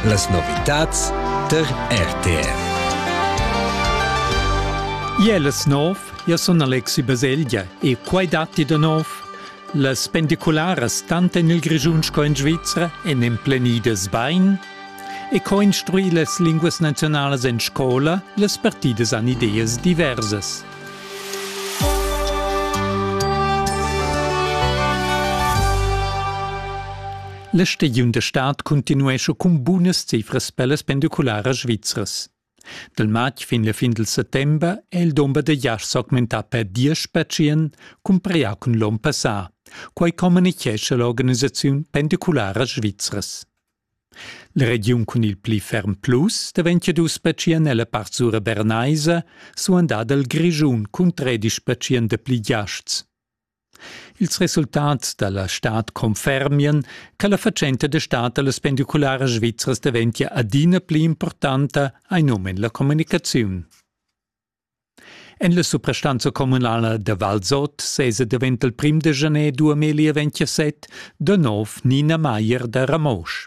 Las novitads tar RTR. Iel es nov, io sun Alexi Baselgia e quai datti da nov. Las pendicularas tant en il Grischun sco in Svizra èn emplenidas bain e co instruir las linguas nazionalas en scola, las partidas han ideas diversas. La stagiun da stad cuntinuescha cun bunas cifras per las pendicularas svizras. Dal matg fin la fin del settembre è il domber da jasch s'augmentà per diesch patient comparia cun l'onn passà. Quai communichescha l'organisaziun Pendiculara Svizras. La regiun cun il pli ferm plus daventia dus pertschient nella part sura bernaisa, suandada il Grischun cun tredisch pertschient dapli giasts. Ils resultats dalla stad confermian che la fatschenta da stad dallas pendicularas svizras daventia adina pli importanta, hai num en la communicaziun. En la suprastanza communala da Valsot sesa davent il prim de gener 2027 de nov Nina Maier da Ramosch.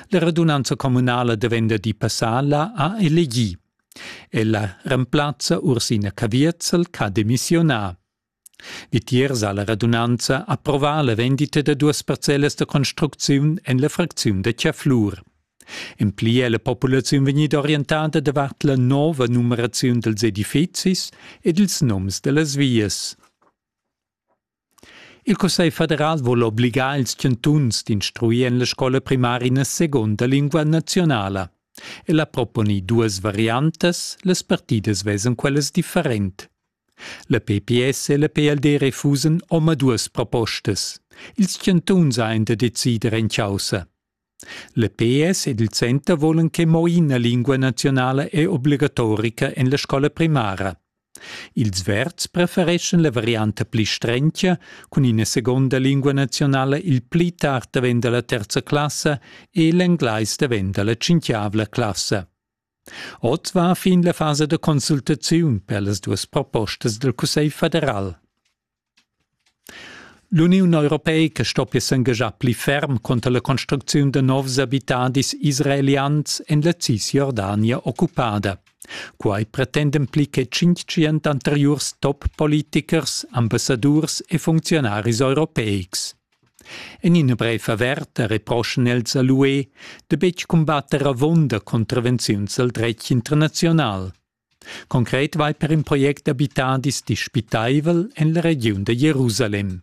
La radunanza communala da venderdi passala ha elegì. Ella remplazza Ursina Caviezel ch'ha demissiunà. Vitiers ha la radunanza approvà la vendita da duas parcellas da construcziun en la fracziun da Chiaflur. En pli è la populaziun vegnida orientada davart la nova numeraziun dals edifizis ed ils noms da las vias. Il Cussegl federal vul obligar ils chantuns d'instruir en la scola primara ina segunda lingua nazionala. El ha proponì duas variantas, las partidas vesan quellas different. La PPS e la PLD refusan omaduas propostas. Ils chantuns ein da decider en caussa. La PS ed il center volan che mo ina lingua nazionala è obligatorica en la scola primara. Ils verds prefereschan la varianta pli strentia, cun ina seconda lingua nazionala il pli tard davent dalla terza classa e l'englais davent dalla cinquiavla classa. Ot va fin la fasa da consultaziun per las duas propostas dal Cussegl federal. L'Uniun europeica stoppia s'engaschar pli ferm conter la construcziun da novs abitadis israelians en la Cisjordania occupada. Quai pretenden pli che 500 anteriurs top-politichers, ambassadurs e funcziunaris europeics. En ina brev averta reproschan els a l'UE da betg cumbatter avunda contravenziuns al dretg internaziunal. Concret vai per in project d'abitadis dispitaivel en la regiun da Jerusalem.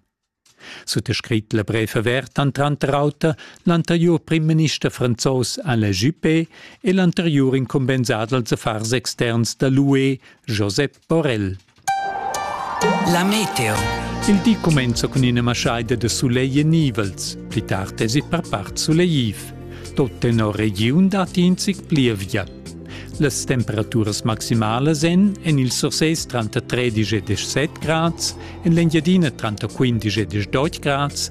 Suttascrit la brev averta han tranter auter l'anteriur primminister franzos Alain Juppé e l'anteriur incumbensà dals affars externs da l'UE Josep Orel. La meteo. Il di comenza cun ina maschaida da sulegl e nivels. Pli tard es per part sulegliv. Tot tenor regiun dat in zic plievia. Las temperaturas maximalas en en il Sursés tranter 13 e 17 grads, en l'Engiadina tranter 15 e 18 grads